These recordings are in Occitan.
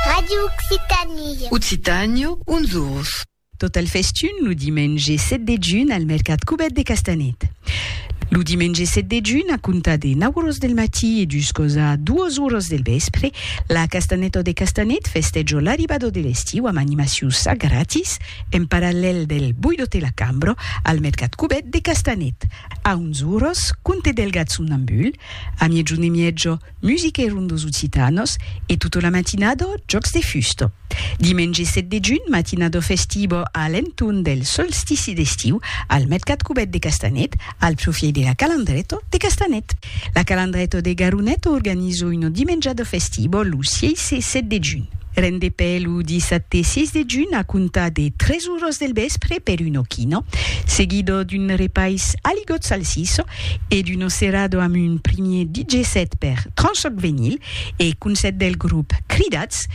Radio Occitanie. Occitània, uns ors. Tot al festun lo dimenge 7 de junh al mercat Cubèt de Castanet. Lo dimenge 7 de junh, a comptar de 9 oras del matí e juscos a 2 oras del vèspre, la Castanèta de Castanet festèjo l'arribada de l'estiu amb animacions a gratis en parallèl del Boidote la Cambra al mercat Cubèt de Castanet. A 11 oras, Conte Delgat somnambul, a miègjun e mièja, Musiquèron dos occitanos e tota la matinada jòcs de fusta. Dimenge 7 de junh, matinada festiva a l'entorn del solstici d'estiu al mercat cubèt de Castanet, al profièit de la Calandreta de Castanet. La Calandreta de Garonet organiza una dimenjada festiva lo 6 e 7 de junh. Rendepè lo dissabte 6 de junh a comptar de 3 oras del vèspre per un ochino, seguido d'un repais aligot salsiço e d'un ocerado amb un primier DJ set per Tranchoc Venyl e concèrt del grop Cridats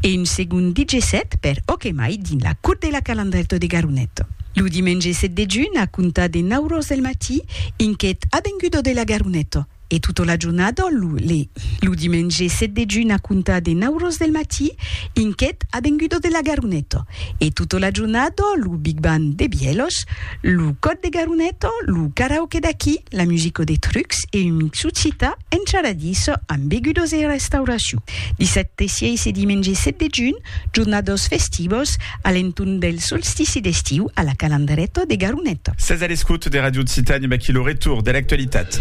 e un segond DJ set per Okemai dins la Cour de la Calandrèto de Garonet. Lo dimenge 7 de junh a comptar de 9 oras del matí, Inquet Avengudo de la Garonet. E tota la jornada, lo le. Lo dimenge 7 de junh a comptar de nau ros del matí, inquèt a venguda de la Garoneta. E tota la jornada, lo Big Band de Bièlhos, lo còr de Garoneta, lo karaoke d'aquí, la musica de Trucs e un mixu cita en charadissa amb begudas e restauracion. Dissabte 6 e dimenge 7 de junh, Jornados festivos a l'entorn del solstici d'estiu a la Calandreta de Garoneta. Sètz a l'escòt de Radio Occitània, vaquí lo retorn de l'actualitat.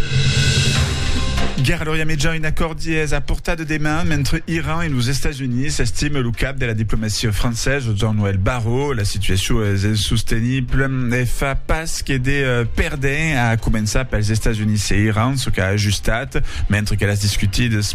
Guèrra Lòria Mejan, un acòrd dies a portar de deman mentre Iran e los Estats Units, estime lo cap de la diplomacia francés, Jean-Noël Barrot. La situacion es insostenible e fa pas que de perdent, a començar pels Estats Units e Iran, çò qu'a ajustat, mentre que las discutidas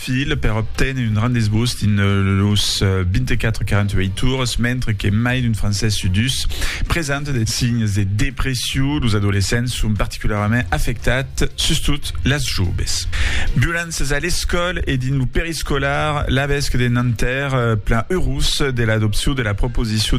fil per obténer un grand desgust dins los 24 48 ores, mentre que mai d'un francés su dus presenta de signes de depression, los adolescents son particularament afectats, sustot las joves. Violéncias a l'escòla e dins lo periscolar, l'avesque de Nanterre plan eurós de l'adopcion de la proposicion